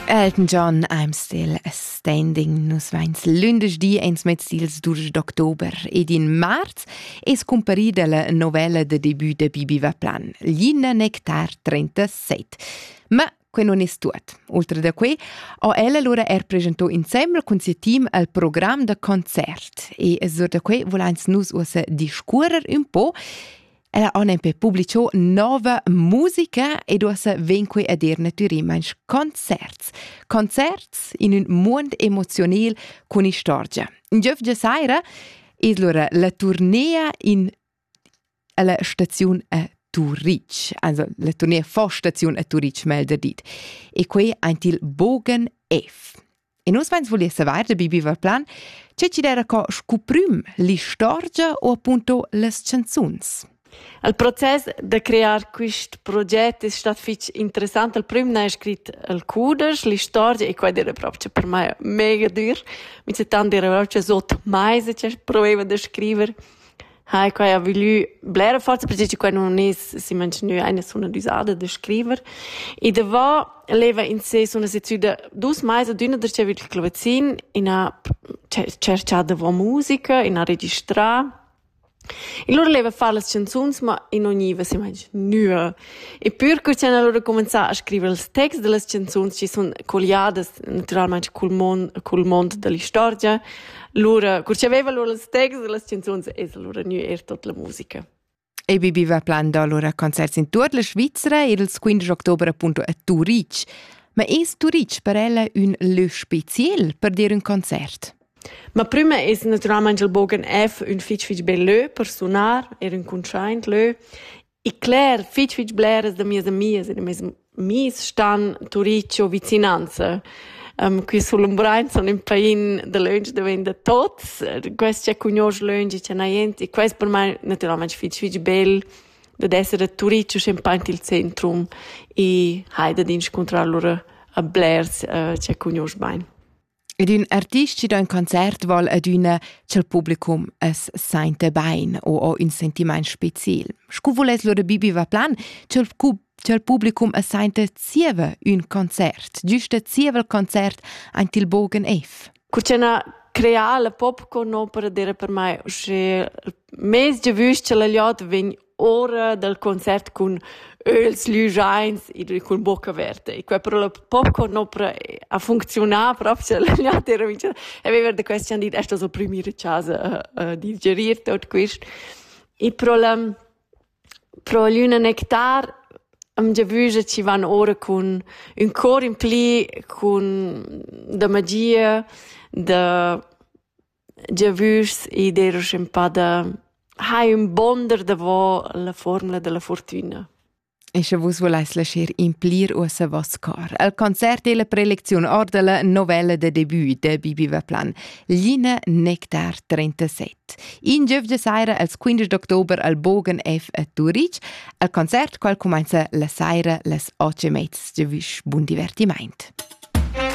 Elton John, I'm Still Standing. Nus vains lündesch di ins mez ils 12 d'october ed in marz es cumparida la novella de debut de Bibi Vaplan, Linna Nectar 37. Ma que non es tuot. Oltre da que ho ella lura er presentò insembel cun siu team al program da concert e sur da que volans nus uossa discuorrer un po Ella on en pe publicho nova musica ed uossa ven qui a dir natürimainch concerts. Concerts in ün muond emozionel cun istorgia. In giövgia saira es lura la turnea in alla staziun a Turitg, also la turnea fa staziun a Turitg melder dit, e quei aint il Bogen F. E nus veins voli saver da Bibi Verplan, che ci era co scuprim l'istorgia o appunto las canzuns. Il proces da crear quest proget è stato fitg interessant. Il primo ne è scritto il cudesch, l'istorgia, e quello era proprio per me mega dur. Mi c'è tanti reproche, so mai se c'è problema da scrivere. Hai, quai ha voglü blera forza perche che quai nun es simmaint gnü aina suna d'üsada da scriver. I davò leva in se suna sezzüda dus mais ad üna da sia vita clavazin, in ha tscherchà davò musica, in ha registrà. In lur leva far las chanzuns, ma in non gniva simmaint gnüa Eppür cur ch'han allura cumanzà a scriver ils texts da las chanzuns chi sun colliadas natüralmaing cul mon cul mond da l'istorgia, lura cur chi aveva lur ils texts da las chanzuns es allura gnü eir tot la musica. EBB va plan da lura concerts in tuot la Svizra ir ils 15 october appunto a Turitg. Ma es Turitg per ella ün lö speziel per dir ün concert? Ma prima es natüralmaing il Bogen F ün fich fich bel lö per sunar, eir ün cuntschaint lö E cler, fitg fitg bleras da mias amias e da mes amis stan Turicio vicinanza. Um, qui sul Umbrein sun ün pain dalöntsch davent da tots. Quest cha cugnuosch lönch e cha n'ha jent. E quest per mai natüralmaing fitg fitg bel dad esser a Turicio schampaint il centrum e hai dad inscuntrar lura a blers uh, cha cugnuosch bain. Ed ün artist chi do ün concert voul adüna cha'l publicum as sainta bain o ho ün sentimaint speciel. Scu vuless lura Bibi Vaplan cha'l cub cha'l publicum as sainta zieva ün concert, güsta zieva il concert aint il Bogen F. Cur cha n'ha creà la pop co n'opera d'eira per mai usché mez giavüsch cha la gliod vegn ora dal concert cun öls lügiains e cun bocca averta e quai però poco no pre ha funcziunà proprio l'atera amica aveva da question dit esta so primira casa uh, di gerir tot quist e pro la pro l'una nectar am giavüja ci van ora cun ün cor in pli cun da magia da Giavüschs id eir uschè ün pa da hai ün bonder davo la fuormula da la furtüna. E sche vus volais lascher implir uossa voss cor al concert e la prelecziun orda la novella de debut de Bibi Vaplan, Line Nectar 37. In giof de saira als 15 d'october al Bogen F a Turich, al concert qual cumanza la saira las 8 e mezz. Giavüsch, bun divertiment!